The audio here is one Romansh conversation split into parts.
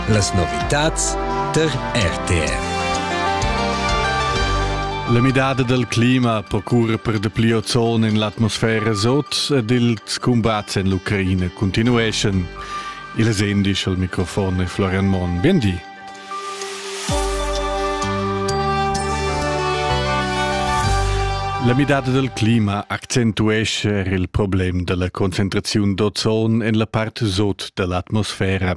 Las novitads tar RTR. La midada dal clima procura per de pli ozon en l'atmosfera sot ed ils combats en l'Ucraina continueschan. Il es indisch al microfon è Florian Monn. Bien di. La midada dal clima accentuescha er il problem da la concentraziun d'ozon en la part sot da l'atmosfera.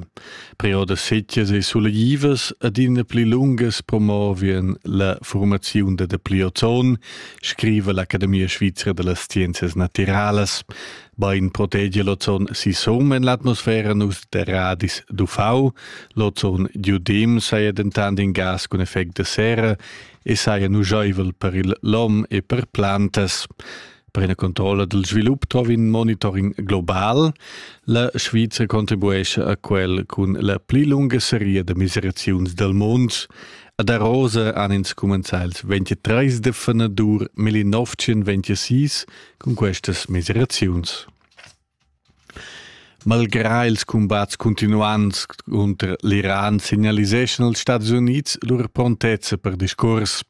Preodas setgas e suleglivas adina pli lungas promovien la formaziun da dapli ozon, scriva l'Academia svizra da las scienzias natiralas. Bain protegia l'ozon sisum en l'atmosfera nus de radis d'UV, l'ozon diodim saja dentant in gas cun effect de serra e saja nugeivel per il lom e per plantas. Per ina controlla del svilup trovi in monitoring global. La Sviza contribuesce a quel cun la pli lunga seria de miseraziuns del mund. Ad Arosa han ins cumenzà il 23 de fenadur 1926 cun questas miseraziuns. Malgrà ils cumbats cuntinuants cunter l'Iran signaliseschan els Stati Unids lur prontezza per discurs.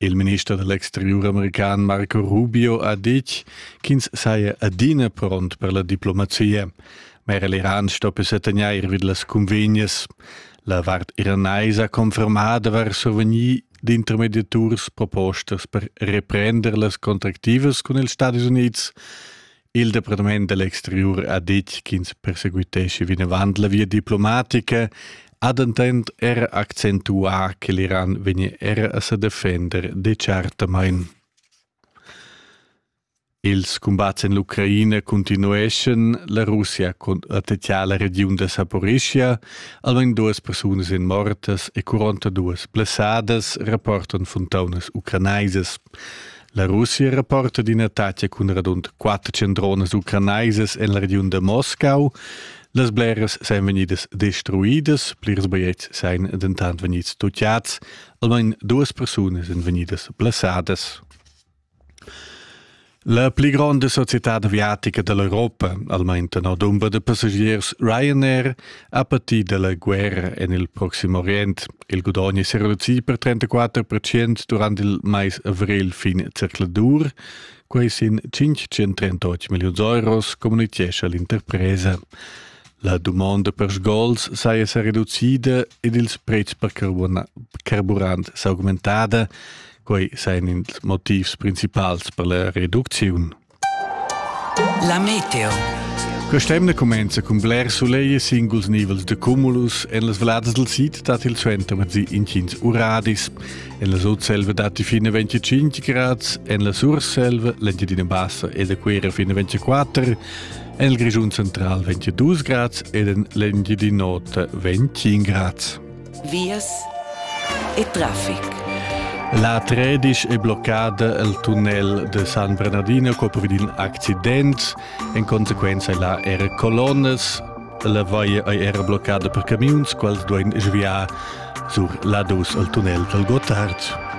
Il minister dell'exterior american Marco Rubio ha ditg ch'ins saja adina pront per la diplomazia. Ma er l'Iran stoppia tegnair vid las cunvegnas. La vart iranaisa confermada var sovegni d'intermediaturs propostas per reprender las contractivas cun ils Stadis Unids. Il Departament dell'Exterior ha detg ch'ins perseguitesce vinavant la via diplomatica ha dentant er accentuà che l'Iran vegnia era a sa defender dechartamain. Ils cumbats en l'Ucraina cuntinueschan, la Russia attatgà la regiun da Saporischia, almain duas persunas èn mortas e quarantaduas blessadas, rapportan funtaunas ucranaisas. La Russia rapporta d'in'attacca cun radund quatter centronas ucranaisas en la regiun da Moscau. Las bleras sajan vegnidas destruidas, plirs bajetgs sajan dentant vegnids toccads, almain duas persunas èn vegnidas blessadas. La pli gronda societad aviatica dall'Europa, almein tenor dumber da passagiers Ryanair, ha pati dalla guerra en il Proxim Orient. Il gudogn è reducì per 34 percent durant il mais avril fin zercladur. Quei sin 538 milliuns euros, communitgescha l'interpresa. La dumonda per sgols saja sa reducida ed ils pretschs per carburant s'augmentada. Quei sein ils motivs principals per la reducziun. La meteo. Quest'emna comenza cun bler soleil e singuls nivels de cumulus en las vladas del sid dat il suentermezzi incins uradis. En la sudselva dat fine 25 grads, en la surselva l'Engiadina Bassa e la Quera fine 24, en il Grischun central 22 grads ed en l'Engiadinota 25 grads. vias e traffic. La tredisch è bloccada il tunnel de San Bernardino co vid in accident. En conseguenza è là era colonnas. La vaia è era bloccada per camiuns, quals duain sviar sur la dus al tunnel del Gottard.